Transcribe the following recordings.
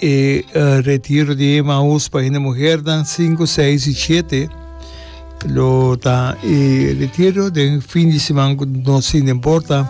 E retiro di Emaús pa hende muhernan sinku, seis i shete lo ta e retiro den fin di siman ku no sin ta importa.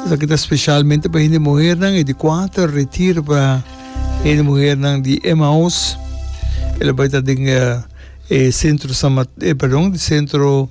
Esaki ta spesialmente pa hende muhernan, e di kuater retiro pa hende muhernan di Emaús. E lo bai ta den e sentro San Mat-, perdon, sentro.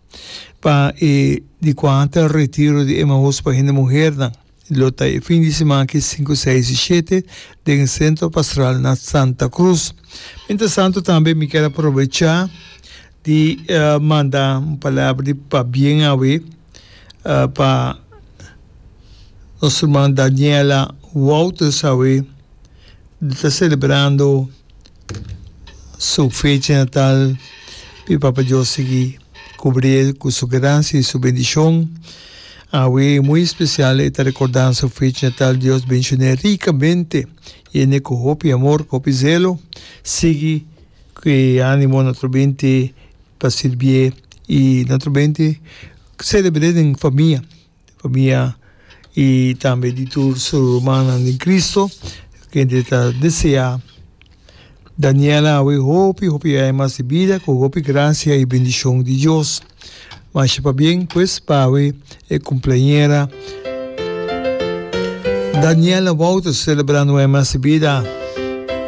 Pa e di kuanta retiro di Emaús pa hende muhernan lo ta e fin di siman aki sinku, seis i shete den e Sentro Pastoral na Santa Cruz. Mientras tanto tambe mi kier a probecha di manda un palabra di pabien awe pa nos herman Daniela Wouters awe lo ta celebrando su fecha natal, p'e Papa Dios sigui cubri'e cu su gracia y su bendicion. Awe muy especial e ta recorda su fecha natal, Dios bendicion'e ricamente, yen'e cu hopi amor, cu hopi zelo, sigui cu e animo na trobente pa sirbi'e y na trobente celebre'e den famia. Pabia i tambe di tur su rumannan den Kristu kende ta deseá Daniela awe hopi hopi aña mas di bida ku hopi grasia i bendishon di Dios. Masha pabien pues pa awe e kumpleañera Daniela Wouters selebrando un aña mas di bida.